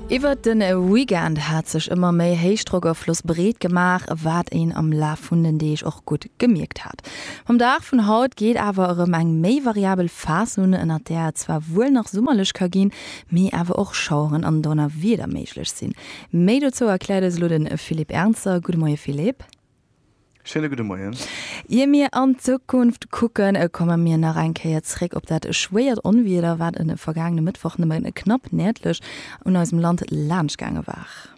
Iwwert de Weekend hat sech ëmmer méi Héichdrockafloss breet gemaach, wat een am Laf vun den Deeg och gutt gemierkt hat. Mam Dag vun haut geet awer erëm eng méi variabel Phas un, ënnert där et zwar wuel nach summerlech ka ginn, mee awer och Schaueren an Donnerwieder méiglech sinn. Méi dozou erkläert eis elo de Philippe Ernzer. Gudde Moie Philippe. Schéine gudde Moien. Ier mir an d'Zukunft kucken, komme mir nach eng Kéier zréck op dat schwéiert Onwieder, wat e vergaangene Mëttwoch nëmme knapp nërdlech un eisem Land laanschtgaange war.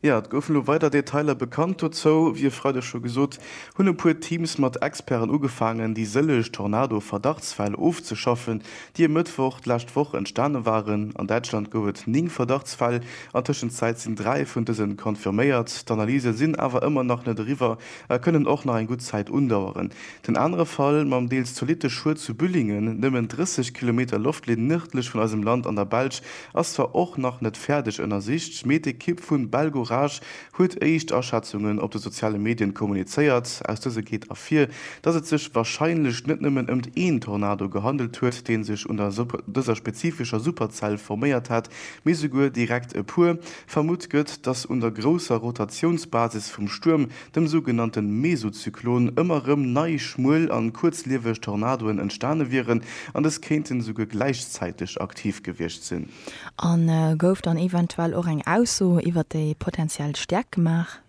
Jo, et goufen elo weider Detailer bekannt dozou. Wéi e Freideg scho gesot, hunn e puer Teams mat Experten ugefaangen, déi sëlleg Tornado-Verdachtsfäll ofzeschaffen. déi e Mëttwoch d'lescht Woch entstane waren. An Däitschland gouf et 9 Verdachtsfäll, an Tëschenzäit sinn 3 vun dëse confirméiert. D'Analysë sinn awer ëmmer nach net eriwwer a kënnen och nach eng gutt Zäit undaueren. Den anere Fall, mam deels zolitte Schued zu Büllingen, nëmmen 30 Kilometer Loftlinn nërdlech vun eisem Land an der Belsch, ass zwar och nach net fäerdeg ënnersicht, mee d'Ekipp vu Belgorage huet éischt Aschätzungen op de soziale Medien kommunizéiert. Aus dëse geet ervir, datt et sech warscheinlech net nëmmen ëmt een Tornado gehandelt huet, dee sech un der dëser spezifescher Superzell forméiert hätt, mee souguer direkt e puer. Vermutt gëtt, datt un der grousser Rotatiounsbasis vum Stuerm, dem sougenannte Mesozyklon, ëmmer rëm nei schmuel an kuerzlieweg Tornadoen entstane wieren an des kéinten souguer gläichzäiteg aktiv gewiescht sinn. An gouf dann eventuell och eng Ausso iwwer déi potentiell Stäerkt gemaach?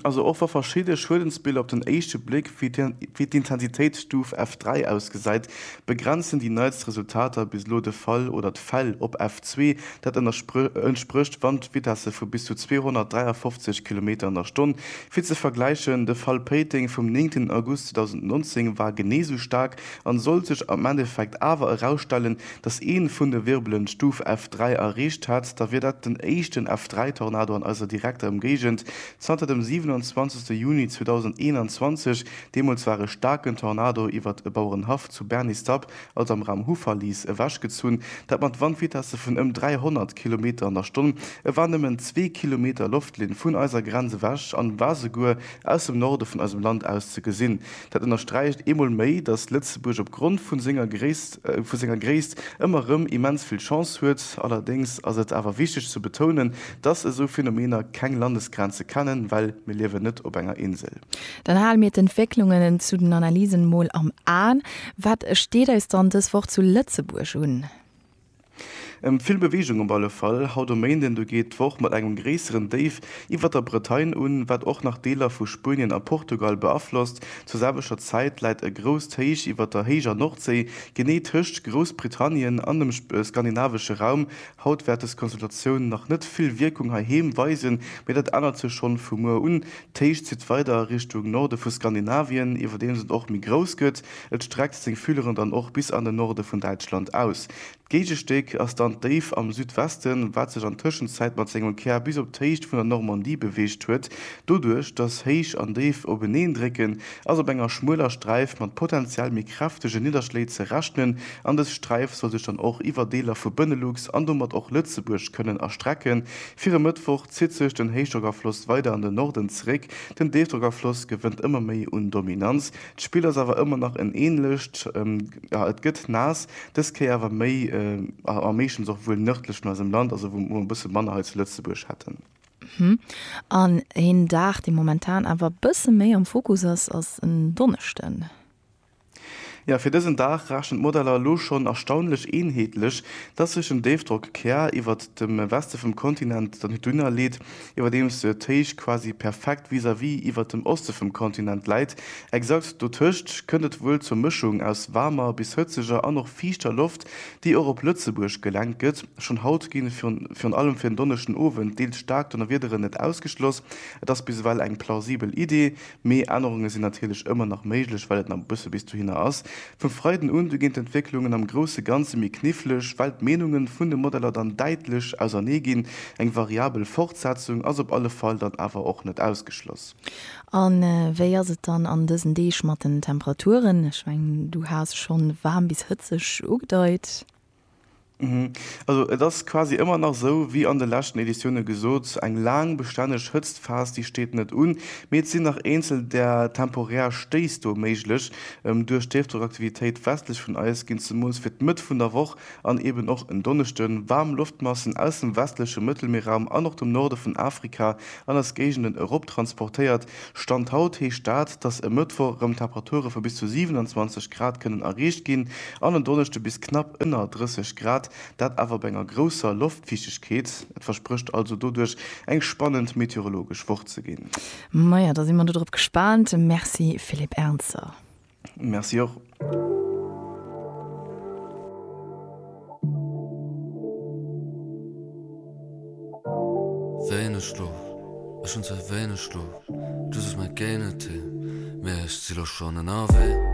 Also och wa verschidde Schuedensbiller op den éischte Bléck wéi d'Intensitéitsstuf F3 ausgesäit, begrenzen déi neitst Resultater bis elo de Fall oder d'Fäll op F2. Dat entsprécht Wandvitesse vu bis zu 253 Kilometer an der Stonn. Fir ze vergläichen, de Fall Péiteng vum 9 August 2019 war genee esou staark An sollt sech am Endeffekt awer erausstellen, dass een vun de Wirbelen Stuf F3 erreecht hat, da wier dat den éischten F3-Tornado an eiser direkter Ëmgéigend zanter dem 27 Juni 2021. Deemools war e staarken Tornado iwwert e Bauerenhaff zu Bernistapp, also am Raum Houffalize, ewechgezunn, dat mat Wandvitesse vun ëm 300 Kilometer an der Stonn. E war nëmmen zwee Kilometer Loftlinn vun eiser Grenz ewech an war souguer aus dem Norde vun eisem Land aus ze gesinn. Dat ënnersträicht eemol méi, datt Lëtzebuerg op Grond vu senger Gréisst, vu senger Gréisst ëmmer erëm immens vill Chance huet. Allerdéngs ass et awer wichteg ze betounen, datt esou Phänomener keng Landesgrenze kennen, well mir liewen net op enger Insel. Dann hale mir d'Entwécklungen zu den Analysen mol am Aen. Wat steet eis dann dës Woch zu Lëtzebuerg un? Vill Beweegung op alle Fall haut um Méinden. Do geet d'Woch mat engem gréisseren Déif iwwert der Bretagne un, wat och nach Deeler vu Spuenien a Portugal beaflosst. Zur selwechter Zäit läit e grousst Héich iwwert der héijer Nordséi, genee tëscht Groussbritannien an dem skandinavesche Raum. Haut wäert des Konstellatioun nach net vill Wierkung heiheem weisen, mee dat ännert sech schonn vu muer un. D'Héich zitt weider a Richtung Norde vu Skandinavien, iwwerdeems et och méi grouss gëtt. Et streckt seng Fühleren dann och bis an den Norde vun Däitschland aus. D'Géigestéck ass dann d'Déif am Südwesten, wat sech an Tëschenzäit mat sengem Kär bis op d'Héicht vun der Normandie beweegt huet. Doduerch, dass Héich an Déif openeen drécken, ass op enger schmueler Sträif mat potenziell méi kräftege Nidderschléi ze rechnen an dës Sträif soll sech dann och iwwer Deeler vu Benelux an domat och Lëtzebuerg kënnen erstrecken. Fir e Mëttwoch zitt sech den Héichdrockafloss weider an den Norden zeréck. Den Déifdrockafloss gewënnt ëmmer méi un Dominanz. D'Spill ass awer ëmmer nach en ähnlecht, jo et gëtt naass, dës Kéier awer méi a meeschtens och wuel nërdlech vun eisem Land, also wou mer e bësse manner hei zu Lëtzebuerg hätten. An een Dag dee momentan awer e bësse méi am Fokus ass, ass en Donneschden. Jo, fir dësen Dag rechnen d'Modeller elo schonn erstaunlech eenheetlech, dass sech en Déifdrockkäer iwwert dem Weste vum Kontinent dann dunnerleet, iwwerdeems de Téich quasi perfekt vis-à-vis iwwert dem Oste vum Kontinent läit. Exakt dotëscht kënnt et wuel zur Mëschung aus waarmer bis hëtzeger an och fiichter Loft, déi och op Lëtzebuerg gelenkt gëtt. Schonn haut gi virun allem fir den Donneschden Owend deels staark Donnerwiederen net ausgeschloss. Et ass bis ewell eng plausibel Idee, Mee Ännerunge sinn natierlech ëmmer nach méiglech, well et nach e bësse bis dohinner ass. Vum Freiden un du ginn d'Entwécklungen am grousse Ganze méi knifflech, well d'Meenunge vun de Modeller dann däitlech ausernee ginn. Eng variabel Fortsetzung ass op alle Fall dann awer och net ausgeschloss. A wéi ass et dann an dësen Deeg mat den Temperaturen? Ech mengen, du has schonn waarm bis hëtzeg ugedeit. Also et ass quasi ëmmer nach esou wéi an de leschten Editioune gesot, eng laang bestänneg Hëtztphas déi steet net un, mee et sinn nach eenzel där temporär Stéiss do méiglech. Duerch d'Héichdrockaktivitéit westlech vun eis ginn zemools fir d'Mëtt vun der Woch an eben och en Donneschde waarm Loftmassen aus dem westleche Mëttelmierraum an och dem Norde vun Afrika an eis Géigenden eroptransportéiert, Stand haut heescht dat, dass e Mëttwoch erëm Temperature vu bis zu 27 Grad kënnen erreecht ginn an en Donneschde bis knapp ënner 30 Grad, dat awer bei enger grousser Loftfiichtegkeet. Et versprécht also doduerch eng spannend meteorologesch Woch ze ginn. Maja, da si mer do drop gespaant. Merci Philippe Ernzer. Merci och. Wéineg Schlof, ech hunn zwar wéineg Schlof, just ech meng Géinetee, mee ech si lo schonn ënnerwee.